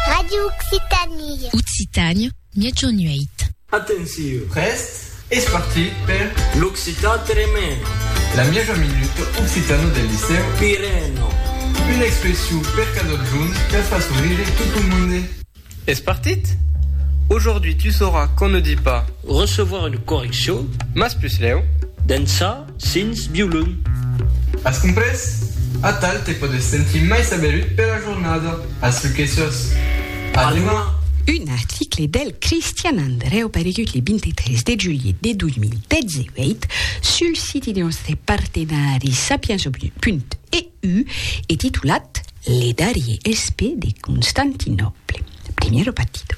Radio Occitanie. Occitània, Miègjorn 8. Atenciu! Prèst? Es partit per l'Occitan Tremèn! La mièja minuta occitana del Licèu Pirèn! Una expression per cadun junt per far sorire tot lo monde! Es partit? Aujourd'hui tu sauras qu'on ne dit pas. Recevoir une correction. Mas puslèu. D'ençà sins violon. As comprés? Atal te pòdes sentir mai saberut pera jornada. As lu que sos. A deman! Un article del Cristian Andrèu aparegut le 23 de julhet de 2018 sul siti de nòstre partenari sapienza.eu. U e titulat Le darrier espè de Constantinòple, Primero Patito.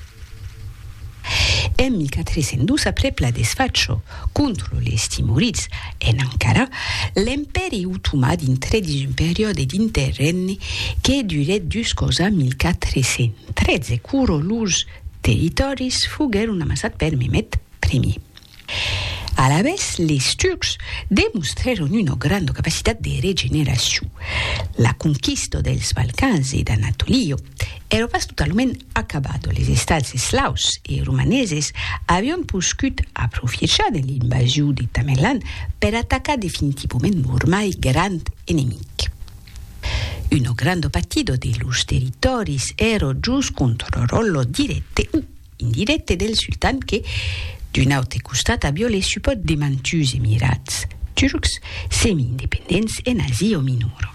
En 1402, aprèp la desfacho contra les timurids en Ankara, l'Empèri otomà dintrè dins un periòde d'interrègne que durèt juscos a 1413, quoro los territòris foguèron amassats per Mehmed Ier. Alavetz, les Turcs demostrèron una granda capacitat de regeneracion. La conquista dels Balcans e d'Anatolia èra pas totalament acabada, les estats eslaus e romaneses avián poscut aprofiechar de l'invasion de Tamerlan per atacar definitivament lor mai grand enemic. Una granda partida de lors territòris èra jos contròrla dirècte o Indirècte del sultan que, d'un aute costat, a violé supòt de mantuns emirats turcs semi-independents en Asia o Minor.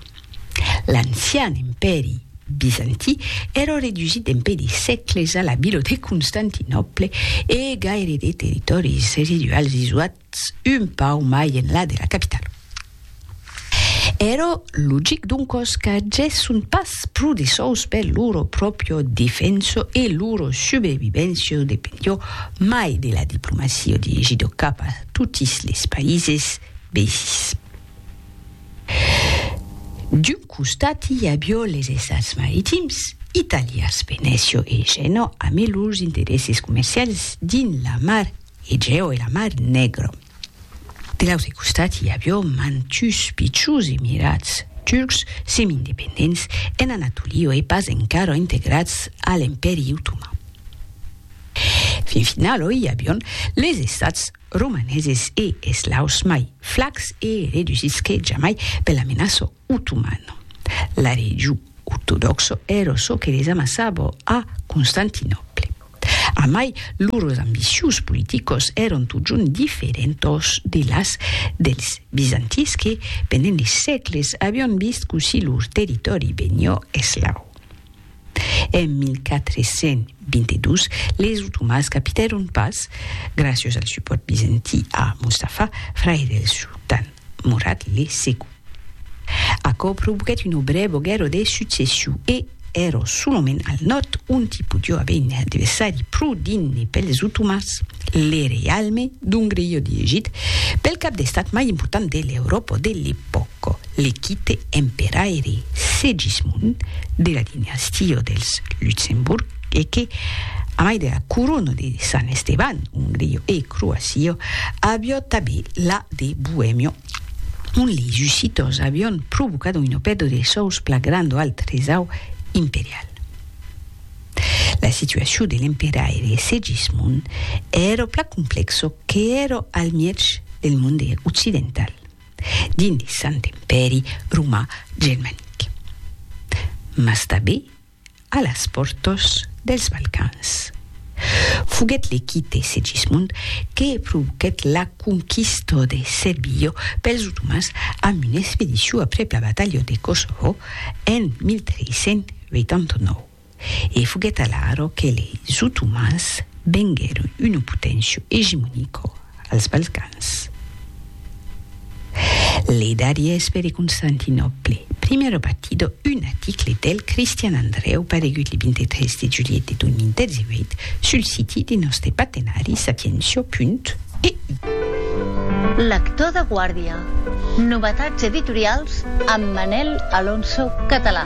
L'ancian empèri bizantí èra redusít dempuèi de sècles a la vila de Constantinòple e gaire de territòris residuals isoat Potz un pauc mai enlà de la capitala. Ero logic doncos qu'agesson pas pro de sòus per loro pròpio defenso e loro subrevivencio dependió mai de la diplomacio dirigidó cap a totis les païses veisins. D'un costat i avió les estats maritims, italians, Venecio e Gènò, amé lors interesses comercials dins la mar E jeo e la mar negro. De l'autre costat i avió mantus pichus e mirats turcs semi-independents en Anatolio e pas encara integrats a l'Empèri Otoman. Fin final oi i avion les estats romaneses e eslaus mai flacs e redusits que jamai per la menaça Otoman. La region ortodòxo ero çò que les amassabo a Constantinòple. A mai, lors ambicius politicos eron totjorn diferentos de las dels bizantins que, pendent de sègles, avion vist cossir lor territòri benio eslau. En 1422, les otomans capitèron pas, graciós al supòrt bizantí a Mustafa, fraire del sultan Murad le Segon. Aquò provoquèt una brèva guèrra de succession e èra solament al nòrd ont i podiá aver un adversari pro digne pels otomans, le reialme d'Ongria-Egit, pel cap d'estat mai important de l'Euròpa de l'epòca. L'equipe emperaire Segismond de la dinastia dels Luxemborg e que, a mai de la corona de Sant Esteban, Ongria e Croacia, avió tanben la de Boemia, ont leis ussitors avión provocado una pèrdua de sòus plan granda al tresau imperial. La situacion de l'emperaire Segismond èra plan complèxa qu'èra al mièg del monde occidental. dins Sant Empèri Romà Germanic, mas tanben a las pòrtas dels Balcans. Foguèt le quite Segismond que provoquèt la conquista de Serbia pels otomans amb una expedicion aprèp la batalha de Kosovo en 1389. E foguèt alaro que leis otomans venguèron una poténcia egemonica als Balcans. Le darriers pere Constantinòple, primièr batido un aticle del Cristian Andrèu paregut le 23 de julhet de 2018 sul siti de nòste patenari sapientia.eu. Lector de guàrdia. Novetats editorials amb Manel Alonso Català.